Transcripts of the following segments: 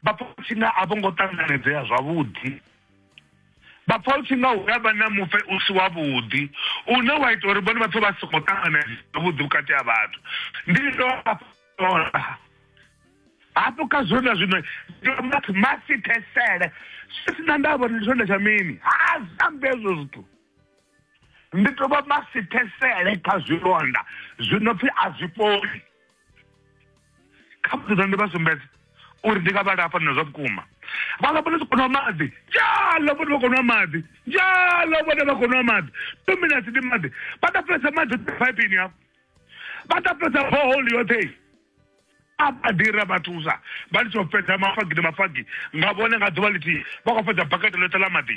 vha pfa u tshi nga a vho ngo ṱanganedzea zwavhuḓi vha pfa u tshi nga hu nga vha na mufe u si wavhuḓi une wa ita uri vhone vhapfe vha songo ṱanganedzea zwavhuḓi vhukati ha vhathu ndi dovha hafho kha zwino na zwino ndomati masithesele zwi si na ndavha uri ndi tshonda tsha mini ha zambi hezwo zwithu ndi to vha masithesele kha zwilonda zwino pfhi a zwi fholi kha mudzudzana ndi vha sumbedze uri ndi nga vha lafha nina zwa vhukuma vha lafha ni si konwa maḓi njalo vhone vha konwa maḓi njalo vhone vha konwa maḓi two minutes ndi maḓi vha tapulesa maḓi phaipini hafho vha tapulesa boholi yoṱhe a badira vha thusa vha litsho fhedza mafagi ndi mafagi nga vhone nga ḓuvha ḽithihi vha khou fhedza bakete ḽoṱhe ḽa maḓi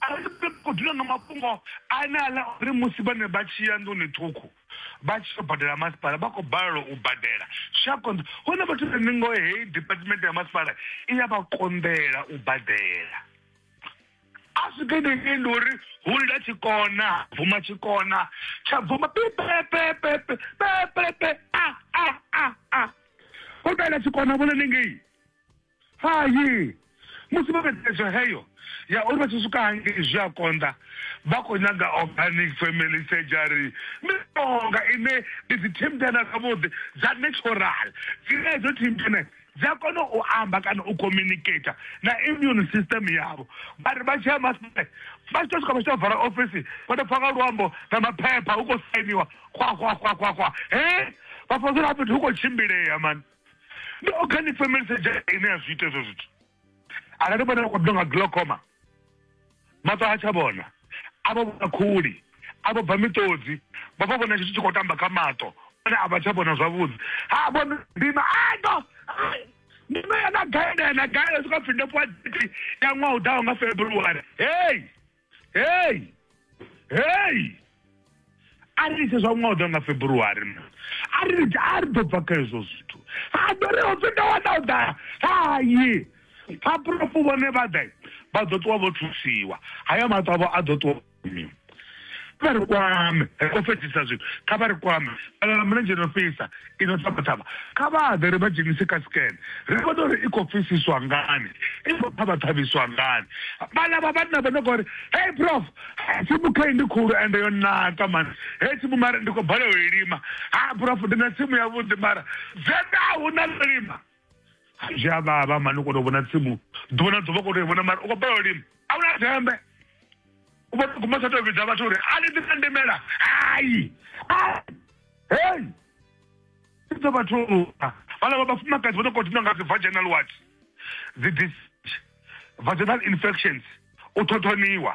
Arali ri tshi khou dzula nga mafhungo ane a ḽa uri musi vhane vha tshi ya nḓuni ṱhukhu vha tshi yo badela masipala vha khou balelwa u badela zwi a konḓa. Huna vhathu vhane ngoho heyi department ya masipala i ya vha konḓela u badela. A swike hanengei ndi uri hu lila tshikona, ha bvuma tshikona tsha bvuma pipepepepe, pepepe, a, a, a, a. Ho dalela tshikona havho hanengei. Hai! Musi vho fhedza thetsho heyo ya uri vha tshi swika hangei zwi a konḓa, vha khou nyaga organic family surgery, mishonga ine ndi dzithembena zwavhuḓi dza natural dzine hedzo thembena dzi a kona u amba kana u communicator na immune system yavho. Vha ri vha tshi ya maṱari vha tshi tou swika vha tshi tou vala ofisi vha tou pfha nga luambo na maphepha hu khou sainiwa xwa xwa xwa xwa xwa, he! Vha fhedzisela fhethu hu khou tshimbilea mani. no kha ni family surgery ine ya zwi ita hezwo zwithu arali vhana vha khou ḓo nga glaucoma maṱo a tsha vhona a vha vhona khuli a vha bva miṱodzi vha vha vhona tshithu tshi khou tamba kha maṱo one a vha tsha vhona zwavhuḓi ha vhona ndima ato ndima yana gaela yana gaela swika pfhi ndo fhiwa diti ya ṅwaha u ḓaho nga february hei heyi heyi a ri litshe zwa ṅwaha u ḓa nga february ma a ri litshe a ri ḓo bva kha hezwo zwithu a ḓo ri hopfi nda wana u ḓa hayi phapurofu vhone vha ḓa vha ḓo ṱuwa vho thusiwa haya maṱo avho a ḓo ṱuwa miwa vha ri kwame ri khou fhedzisa zwithu kha vha ri kwame vhalala mulenzhe no fhisa Ino Thavhathavha, kha vha ḓe ri vha dzhenise kha scan, ri vhone uri i khou pfisiswa ngani, i khou ṱhavhaṱhavhiswa ngani. Vhaḽa vha vhanna vha no khou ri, Hey Prof, tsimu khei ndi khulu ende yo naka man, hei tsimu mara ndi khou balelwa u i lima. Ha Prof, ndi na tsimu yavhuḓi mara dzenda a hu na ḽo lima. zwi a vhavha mani u kona u vhona tsimu ḓuvha na ḓuvha u kona u vhona mara u khou balelwa lini a una dzembe u vhona guma tsha tou vhidza vhathu uri a ni ḓi ndimela hayi hei ḓo vhathu vhala vha vhafumakadzi vha no khou dina nga dzi vaginal what dzi vaginal infections u thothoniwa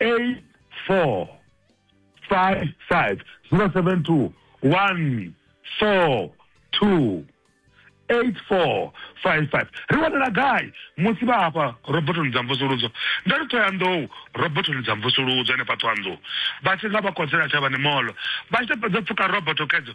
eight four five five zero seven two one four two eight four five five ri wanala gai musi vha hafha robotoni dza mvusuludzo nda ri thoyandou robotoni dza mvusuludzo henefha thoyandou vha tshi nga vha kodzela tshavhani molo vha tshi to fhedza pfuka roboto kedzo